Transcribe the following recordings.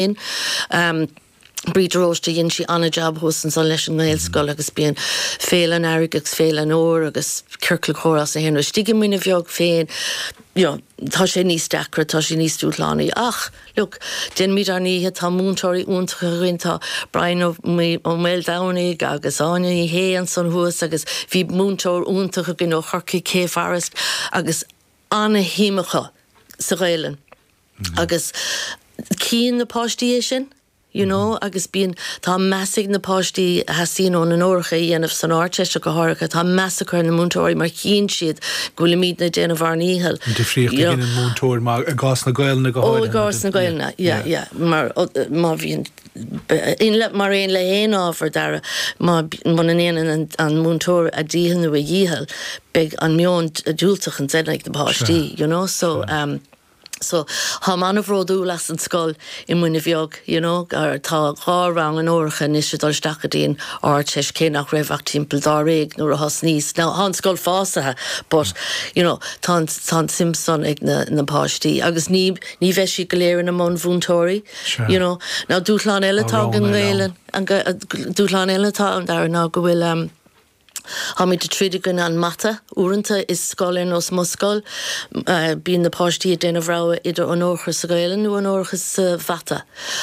féin. Bríde de Róiste dhein sí an-jab thuas ansan leis an nGaelscoil agus bíonn Féile an Earraigh agus Féile an Fhómhair agus Ciorcal Comhrá is naíonra istigh i Muine Bheag féin you know tá sé níos deacra tá sé níos dúshlánaí ach look déanfaimid ár ndícheall tá múinteoirí iontacha againn tá Brian Ó Ó Maoldomhnaigh agus Áine Ní Shé ansan thuas agus bhí múinteoir iontach againn ó Chorcaigh Kay Forrest agus ana-shuim acu sa Ghaelainn. agus cíonn na páistí é sin, you know, agus bíonn, tá meas ag na páistí a theastaíonn uathu onóracha a dhéanamh san Ardteist go háirithe, tá meas acu ar na múinteoirí mar chíonn siad go bhfuilimídne ag déanamh ár ndícheall. An difríocht a dhéanann múinteoir mar, i gcás na Gaelainne go háirithe. Ó, i gcás na Gaelainne, yeah, yeah, mar má bhíonn, mar aon le haon ábhar, Dara, má, muna ndéanann an múinteoir a dícheall nó a dhícheall, beidh an meon diúltach ansin ag na páistí, you know, so. So, táim an-bhródúil as an scoil i Muine Bheag, you know, mar tá dhá rang onóracha anois ag dul isteach go dtí an Ardteist, cé nach raibh ach timpeall dáréag nuair a thosnaíos. Now, tá an scoil fásaithe, but, you know, tá an, tá an tsuim san ag na, na páistí, agus ní, ní bheidh siad go léir ina mbunmhúinteoirí, you Sure. know. Now, dúshlán eile Tá atá ag roghanna an eile ann. nGaelainn, an, Ga- dúshlán eile atá ann, Dara, ná go bhfuil, um, Táimid ag troid i gcoinne an mata. Uaireanta i scoil ar nós mo scoil, bíonn na páistí ag déanamh rogha idir onóracha sa Ghaelainn nó onóracha sa mhata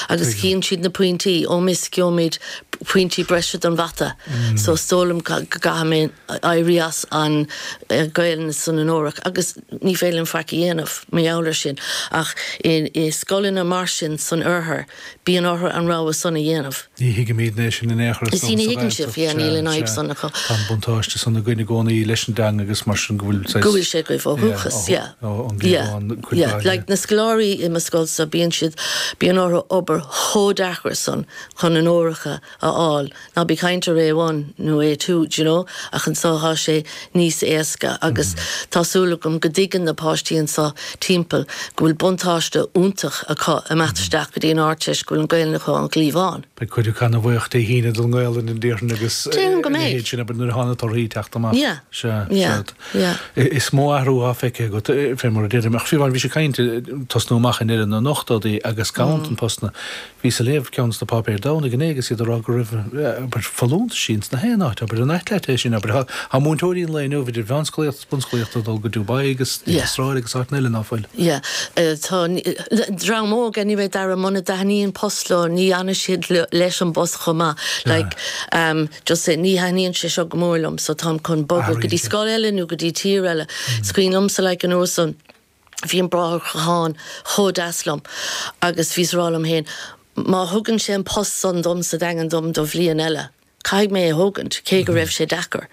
agus chíonn siad na pointí, oh miss gheobhaimid pointí breise don mhata so is dóigh liom go gcaithfidh mé éirí as an Ghaelainn san onórach agus ní féidir linn faic a dhéanamh mar gheall ar sin ach i scoileanna mar sin san oirthear, bíonn orthu an rogha san a dhéanamh. Ní thuigimid é sin in aon chor anso Sea ní sa thuigeann sibh, Ghaeltacht. yeah, níl Sea, an fhadhb sea. san acu. Tá an buntáiste san againn i gcónaí leis an dteanga agus mar sin go bhfuil saghas. Go bhfuil sé agaibh ó dhúchas, yeah. Yeah, ón gcliabhán Yeah, cuid yeah. mhaith, Like yeah. na scoláirí i mo scoil so, bíonn siad, bíonn orthu obair chomh deacair san chun onóracha a fháil, ná bí ag caint ar A1 nó A2, do you know, ach anso tá sé, níos éasca agus tá súil agam go dtuigeann na páistí anseo timpeall go bhfuil buntáiste iontach acu imeacht isteach go dtí an Ardteist go bhfuil an Ghaelainn acu ón gcliabhán. Beidh cuid acu ana-bhuíoch Dé hAoine don nGaolainn a déarfainn agus Déarfainn go ina mbeidh. dhiaidh sin abair nuair atá na torthaí ag teacht amach. Yeah. Sea. Yeah. Sea. Yeah. I- Is mó athrú athá feicthe agat, eh, fé mar a deirim, ach fiú amháin bhís ag caint, eh, tosnú amach i ndeireadh na n-ochtóidí agus ganntan postanna. Bhíos ag léamh ceann sna páipéir Domhnaigh inné agus iad ag rá go raibh abair folúntais ins na haon áit, abair nó a leithéid sin, abair, tá múinteoirí an lae inniu, idir mheánscolaíocht agus bunscolaíocht, ag dul go Dubai agus an Astráil agus áiteanna eile ná fuil. Yeah tá dream óg anyway Dara muna dtaithníonn post leo ní fhanfaidh siad leis an bpost chomh maith like em just say ní thaithníonn sé seo go mór liom so táim chun bogadh go dtí scoil eile nó go dtí tír eile. Is cuimhin liomsa like anuas an bhí an Bráthair Ó Catháin chomh deas liom agus bhíos ag rá liom féin, 'má thugann sé an post san dom sa Daingean dom do bhliain eile, caithfidh mé é thógaint', cé go raibh sé deacair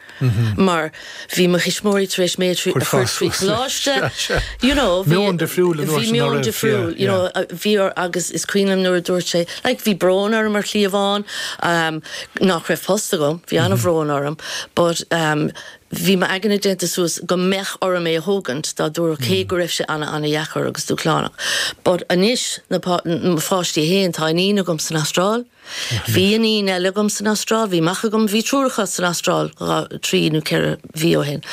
mar bhí mo thuismitheoirí tar éis mé a chur trí Choláiste, you know, bhí meon difriúil ann, bhí meon difriúil, you know, bhí orm agus is cuimhin liom nuair a dúirt sé, like, bhí brón orm ar shlí amháin, em, nach raibh post agam, bhí an-bhrón orm but, em, Bhí m'aigne déanta suas go mbeadh orm é a thógaint dá dtabharfadh, cé go raibh sé ana ana dheacair agus dúshlánach. But anois, mo pháistí fhéin, tá iníon agam san Astráil, bhí iníon eile agam san Astráil, bhí mac agam, bhí triúr acu san Astráil dhá, trí nó ceithre mhí ó shin.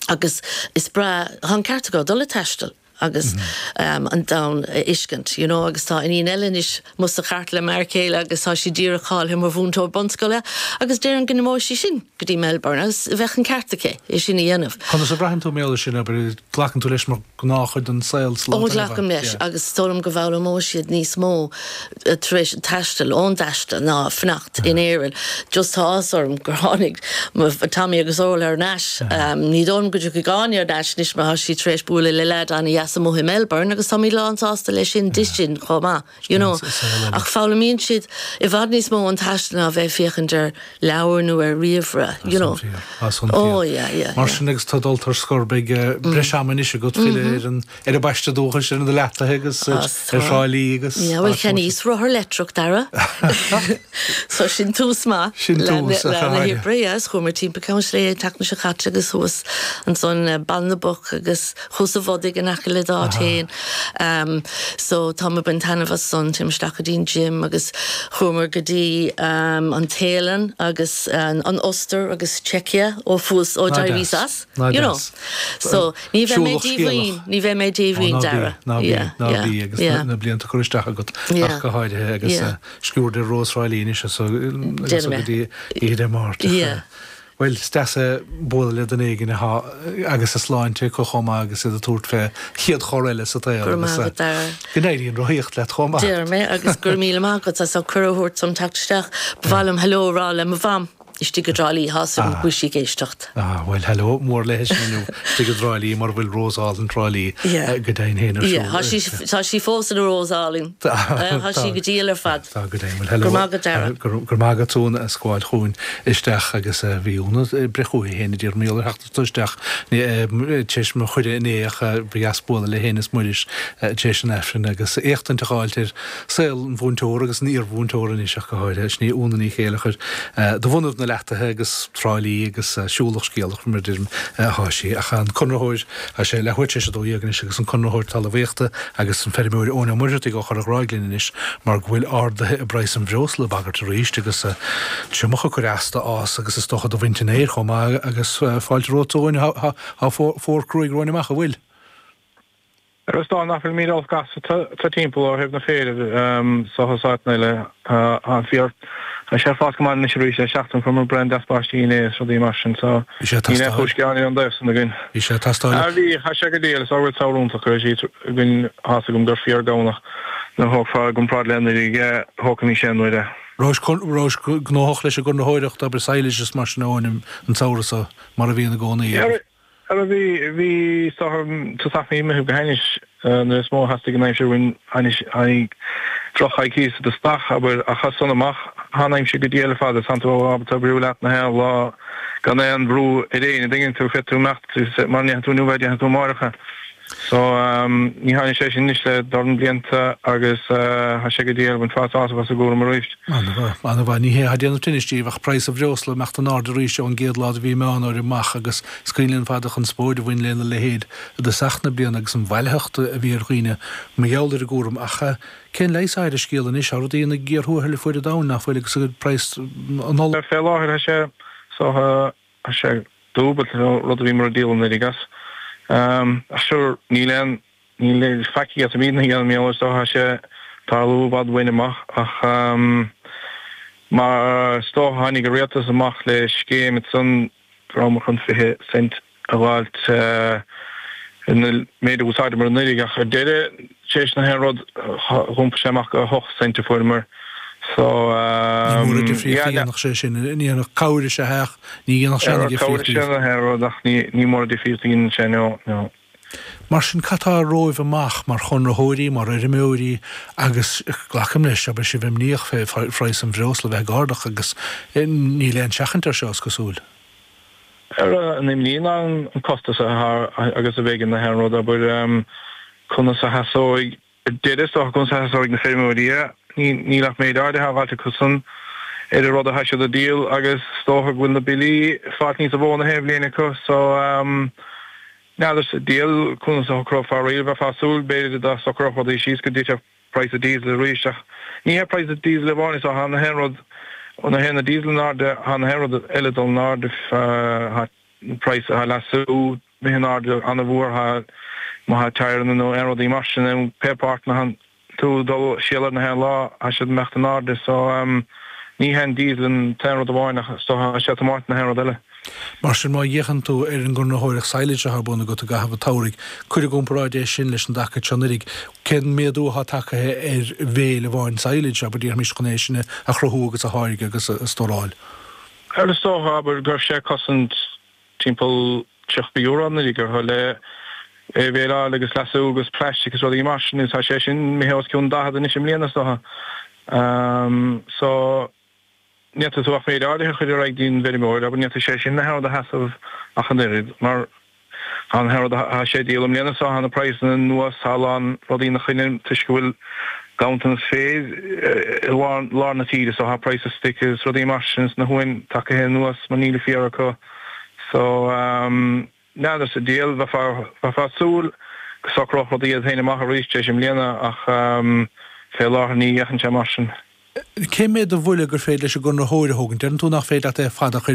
Agus is breá, tá an ceart acu, dul ag taisteal. agus an domhan a fheiscint, you know agus tá iníon eile anois amuigh sa chairt le m'fhear céile agus tá sí díreach cáilithe mar mhúinteoir bunscoile agus déarfainn go n-imeoidh sí sin go dtí Melbourne agus bheadh an ceart aici é sin a dhéanamh. Conas a bhraitheann tú mar gheall air sin, abair, glacann tú leis mar ghnáthchuid den saol sa lá atá inniu ann? Ó glacaim leis agus is dóigh liom go bhfoghlaimeoidh siad níos mó tar éis an taistil, ón dtaistil, ná fanacht in Éirinn. Just tá áthas orm gur tháinig Tommy agus Orla ar ais. Ní dóigh liom go dtiocfaidh Áine ar ais anois mar tá sí tar éis bualadh le leaid an-deas amuigh i Melbourne agus táimid lán sásta leis sin di sin chomh maith, you know. Ach foghlaimíonn siad i bhfad níos mó ón taistil ná bheith ag féachaint ar leabhair nó ar ríomhaire, you know. Tá san fíor, tá san fíor. Mar sin agus tá dulta ar scor beidh breis ama anois agat filleadh ar an Ar an bpaiste dúchais, ar na leataithe agus ar Thrá Lí agus. Bhuel cheannaíos rothar leictreach, Dara. So sin tús maith. Sin tús, a Chairde. Leath na hoibre, yes. Chuamar timpeall Cheann Sléibhe an tseachtain seo caite agus thuas ansan Baile na bPoc agus Cuas an Bhodaigh in aice le d'áit fhéin. So táim ag baint taitneamh as san. Téim isteach go dtí an gym agus chuamar go dtí an Téalainn agus an Ostair agus Czechia ó fuas, ó d'éiríos as, you know. So. Ní bheidh mé díomhaoin, ní bheidh mé díomhaoin, Dara. Ná bí, ná bí, agus na blianta curtha isteach agat, ach go háirithe, agus sciuird ar Rós Thrá Lí anois as so go dtí Oíche Dé Máirt. Bhuel, is deas bualadh le duine éigin agus a sláinte acu chomh maith agus iad ag tabhairt fén chéad chor eile sa tsaol. Go raibh maith agat, Dara. Go n-éirí an rothaíocht leat chomh maith. Deir mé, agus go raibh míle maith agat as an gcuireadh a thabhairt dom teacht isteach. Ba mhaith liom 'hello' a rá le mo Mham. istigh i dTrá Lí, tá a fhios agam go bhfuil sí ag éisteacht. Ah, bhuel, hello mór léi sin inniu, istigh i dTrá Lí, mar a bhfuil Rós Álainn Thrá Lí, go deimhin féin, ar siúl. Tá sí fós ina Rós Álainn. Tá sí go diail ar fad. Tá go deimhin. Hello. Go raibh maith agat, Dara. Go raibh maith agat, Úna, as gabháil chugainn isteach agus bhí Úna ag breith chugainn féin i dTír an Iolair. Dul isteach tar éis mo chuireadh inné ach ba dheas bualadh le hÁine is Muiris tar éis an Aifrinn agus éachtaint a fháilt ar saol an mhúinteora agus an iarmhúinteora anois ach go háirithe. Sin í Úna Ní Chéilleachair do bhunadh na leataithe agus Trá Lí agus siúlach scéalach mar a deirim atá sí ach an conraitheoir, tá sé leathuair tar éis 12 anois, agus an conraitheoir talmhaíochta, agus an feirmeoir Eoin Ó Muircheartaigh ón Chorrghráig linn anois mar go bhfuil arduithe i bpraghas an bhreosla ag bagairt arís agus triomach ag cur as do fhás agus is dócha do bhaint an fhéir chomh maith agus fáilte romhat a Eoin tá fómhar cruaidh romhainn amach an bhfuil. Is dócha nach bhfuilimid ró-olc anso timpeall ó thaobh an fhéir de, seachas áiteanna eile, tá an féar. Tá sé ag fás go maith anois arís, le seachtain fuaireamar braon deas báistí inné is rudaí mar sin so níl aon chúis gearáin ón dtaobh san againn. Bhí sé ag teastáil. Ah bhí, thá sé go diail, is oiread samhradh iontach a raibh siad againn tá a fhios agam gur fíor Domhnach nuair a thógfá i gcomparáid le nuair a thógfadh bhí sé anuraidh. Rabhais, an rabhais gnóthach leis an gConraitheoireacht, obair sadhlais is mar sin a Eoin an samhradh so, mar a bhíonn i gcónaí, ar. Ara bhí, bhí is dócha an tosach imithe go hainnis nuair is mó a theastaigh an aimsir uainn tháinig drochchoicíos i dtosach, abair, ach as san amach thá'n aimsir go diail ar fad is tánn tú ábalta oibriú leat na haon lá gan aon bhrú ar éinne, an dtuigeann tú, féadfaidh tú imeacht mara ndéanfaidh tú inniu é déanfaidh tú amáireach. So ní tháinig sé sin anois le dorn blianta agus tha sé go diail, bhainfeá sásamh as an gcúram arís. Ana-mhaith, ní hé atá ag déanamh tinnis díbh ach praghas an bhreosla ag imeacht in airde arís ón gcéad lá do mhí Meán Fómhair amach agus is cuimhin linn ar fad an chonspóid a bhain lena leithéid i dtosach na bliana agus an bhailitheacht a bhí ar dhaoine mar gheall ar an gcúram ach cén leigheas atá ar an scéal anois tá rudaí ina gcíor thuathail ar fuaid an domhain nach bhfuil agus praghas an ola Fé láthair tha sé so Tá sé dúbailte, an rud a bhíomar ag díol anuraidh as. Ach sure, níl aon ní faic atáimid in ann a dhéanamh mar gheall air, is dócha tá sé ag tarlú i bhfad uainn amach, ach mar is dócha tháinig an Rialtas amach le scéim ansan go rabhamar chun 20 cent a dh'fháilt ar an méid a d'úsáideamar anuraidh, ach ar deireadh, Tréis na haon rud, d'iompaigh sé amach gur 8 cent a fuaireamar. So. Ní mór an difríocht a dhéanfadh sé sin. Ní dhéanfadh cabhair is ea é ach ní dhéanfadh sé ana-dhifríocht daoibh. Ní dhéanfadh cabhair is ea na haon rud ach ní mór an difríocht a dhéanann sé, no, no. Mar sin, cad tá romhaibh amach mar Chonraitheoirí, mar fheirmeoirí agus, glacaim leis, go bhfuil sibh imníoch fé phraghas an bhreosla bheith ag ardach agus níl aon seachaint air seo, is cosúil. Ara an imní ná an costas atá air agus a bheith ag ceannach an rud, abair, conas a sheasóidh, deireadh is dócha, conas a sheasóidh na feirmeoirí é. Níl ach méid áirithe á fháilt acu san ar an rud atá siad a dhíol agus is dócha go bhfuil na billí ag fáilt níos mó na haon bhliain acu so n'fheadar sa diail conas a shocrófar é, bheifeá ag súil b'fhéidir go socródh rudaí síos go dtitfeadh praghas an díosail arís. Ach ní hé praghas an díosail amháin so tá gach aon rud, nuair a théann an díosal in airde, tá gach aon rud eile ag dul in airde praghas leasú, imithe in airde an-mhór má tá tyre nó aon rudaí mar sin, pé páirt atá tú ag dul ag soláthar gach aon lá, tá siad ag imeacht in airde. So ní hé an díosal an t-aon rud amháin so tá sé mar gach aon rud eile. Mar sin, má fhéachann tú ar an gconraitheoireacht silage atá ar bun agat i gcaitheamh an tsamhraidh, cuir i gcomparáid é sin leis an dtaca seo anuraidh. Cén méadú atá tagtha ar bhale amháin silage, abair, déarfaimis, chun é sin a chruthú agus a tháirgeadh agus a stóráil? Bhuel, is dócha, abair, go raibh sé ag cosaint timpeall tríochta euro anuraidh, ar chúl é a bhaleáil agus leasú agus plaistic is rudaí mar sin, agus tá sé sin imithe os cionn daichead anois i mbliana, is dócha. So. N'fhéadfadh tú ach méid áirithe a chur ar aghaidh go dtí an bhfeirmeoir, abair, n'fhéadfadh sé sin an oiread a sheasamh ach an oiread, mar tá an t-earra atá sé ag díol i mbliana seo, tá na praghsanna anuas, tá a lán rudaí ina choinne toisc go bhfuil ganntanas féir i lár na tíre, so tá praghas stoic agus rudaí mar sin sna huain tagtha anuas mar níl an féar acu. So. N'fheadar sa diabhal. Bheifeá ag súil go socródh rudaí iad féin amach arís arís i mbliana ach fé láthair ní fhéachann sé mar sin. Cé mhéad de bhuille gur féidir leis an gconraitheoir a thógaint? Deireann tú nach féidir leat é ar fad a chur